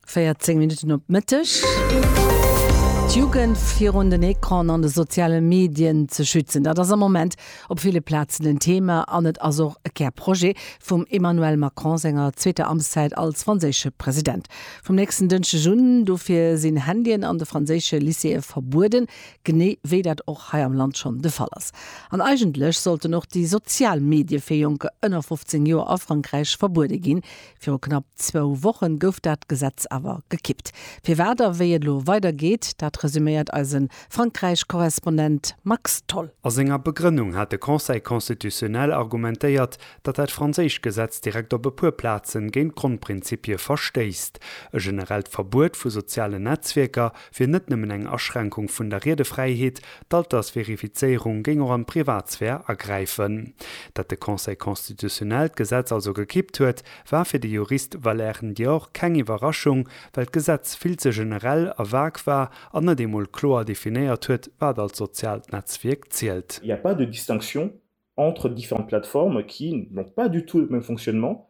14 Minutten op Mëtteg. D'Jugend virun den Ecran an de soziale Medien ze schützen, dat ass am Moment op ville Plazen en Thema an et ass och e Kärprojet vum Emmanuel Macron senger zweeter Amtszäit als franséische President. Vum nächsten Dënschdeg un dofir sinn Handyen an de franséische Lycéeë verbueden, Genee wéi dat och hei am Land schonn de Fall ass. An eigentlech sollten och déi sozial Medie fir Jonker ënner 15 Joer a Frankräich verbuede ginn. Viru knapp zwou Wochen gouf dat Gesetz awer gekippt. Firwat a wéi et elo weider geet, dat resüméiert eise Frankräich-Korrespondent Max Tholl. A senger Begrënnung hat de Conseil constitutionnel argumentéiert, datt dat franséischt Gesetz direkt op e puer Plazen géint d'Grondprinzipie verstéisst. E generellt Verbuet vu sozialen Netzwierker wier net nëmmen eng Aschränkung vun der Riedefräiheet, d'Altersverifizéierung géing och an d'Privatsphär agräifen. Dat de Conseil constitutionnel d'Gesetz also gekippt huet, war fir de Jurist Valère Ndior keng Iwwerraschung, well d'Gesetz vill ze generell a vague war an net eemol kloer definéiert huet, wat als soziaalt Netzwierk zielt. Il n'y a pas de distinction entre différentes plateformes qui n'ont pas du tout le même fonctionnement,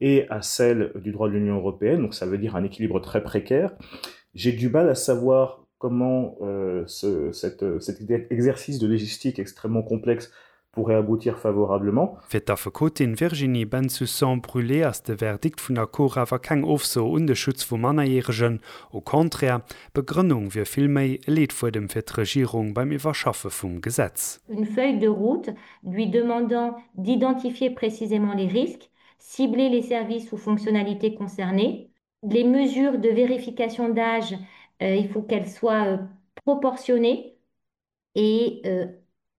et à celle du droit de l'Union européenne, donc ça veut dire un équilibre très précaire, j'ai du mal à savoir comment ce cet cet exercice de légistique extrêmement complexe pourrait aboutir favorablement. Fir d'Affekotin Virginie Bensussan-Brulé ass de Verdikt vun der Cour awer keng Ofso un de Schutz vu Mannerjäregen, au contraire, d'Begrënnung wier vill méi e Leetfuedem fir d'Regierung beim Iwwerschaffe vum Gesetz. une feuille de route lui demandant d'identifier précisément les risques cibler les services ou fonctionnalités concernées, les mesures de vérification d'âge, il faut qu'elles soient proportionnées et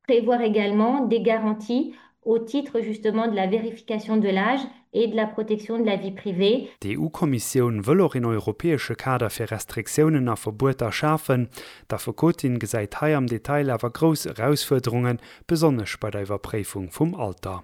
prévoir également des garanties au titre justement de la vérification de l'âge et de la protection de la vie privée. D'EU-Kommissioun wëll och een europäesche Kader fir Restriktiounen a Verbueter schafen. D'Affekotin gesäit hei am Detail awer grouss Erausfuerderungen, besonnesch bei der Iwwerpréifung vum Alter.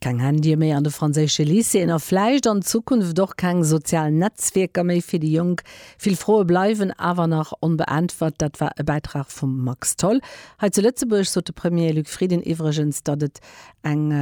Keng Handye méi an de franséische Lycéeën a vläicht an Zukunft och keng sozial Netzwierker méi fir déi Jonk. Vill Froe bleiwen awer nach onbeäntwert. Dat war e Bäitrag vum Max Tholl. Hei zu Lëtzebuerg sot de Premier Luc Frieden iwwregens, datt et eng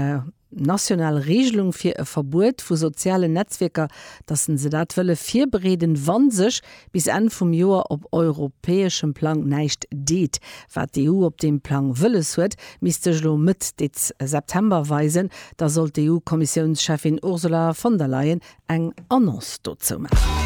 national Reegelung fir e Verbuet vu sozialen Netzwierker, datt se dat wëlle virbereeden, wa sech bis Enn vum Joer op europäeschem Plang näischt deet, wat d'EU op deem Plang wëlles huet, misst sech elo Mëtt Dez. September weisen. Da soll d'EU-Kommissiounscheffin Ursula von der Leyen eng Annonce dozou maachen.